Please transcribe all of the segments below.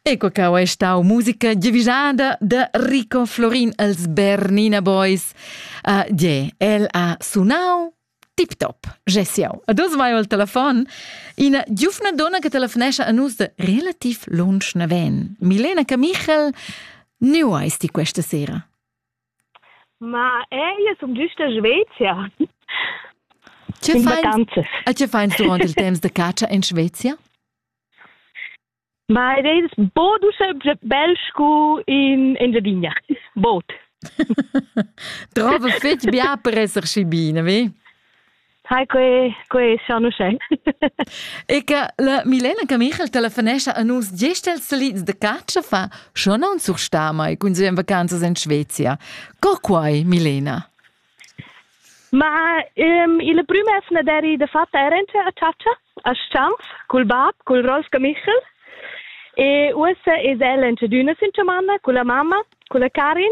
Ecco cau è stau musica divisada da Rico Florin els Bernina Boys. Uh, yeah, el ha sunau tip top. Gesiau. A dus vai al telefon ina giufna donna che telefonescha a nus de relativ lunsch naven. Milena Camichel, nu eis ti questa sera? Ma ella sum giusta Svezia. Che vacanzas? E che fais durant il temps de catscha in Svezia? Ma ed es bod uschè bel scu in Engiadina. Bod. Trova fitg bia per esser schi bine, vi? Hi, que, que schon uschè. e che la Milena Camichel telefonescha a nus gest els salids de caccia fa, schon non sursta mai cun sue vacanzas in Svezia. Co quai, Milena? Ma um, il primo es ne deri de fatta erente a caccia, a Stans, col bab, col Rolf Camichel. E uossa es el en d'una sincemanna con la mamma, con la Karin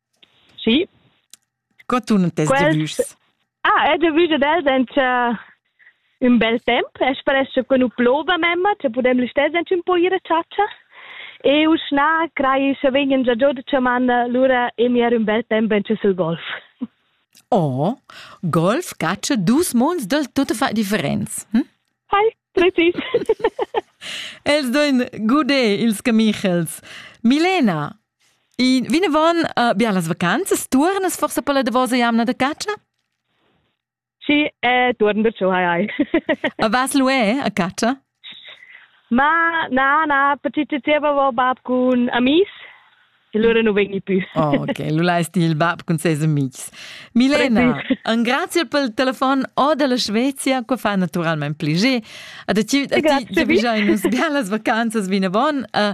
Sì. Co tun tes Quels... debüs? Ah, il debüs ed els han ün bel temp. Es sparesce con nu plova memma, cha pudem listess anche un po ir a chatscha. E uschna crai cha vegnan già giò da chamanna, lura e mier ün bel temp anche sul golf. Oh, golf caccia dus munds del tutta fa differenz. Hm? Hai, precis. Els doen gude ils camichels. Milena, I vinavon uh, bien las vacanzas. Tuornas forsa per la davosa jamna da catscha? Sì, eh, torno perciò, hai hai. A vas lu eh, a catscha? Ma na, na, perché ti avevo bab con amis e loro non vengono più. oh, ok, lu l'hai il bab con ses amics. Milena, un grazie per il telefono o della Svezia, che fa naturalmente piacere. A ti, a ti già bisogno bien las vacanzas vinavon. Uh,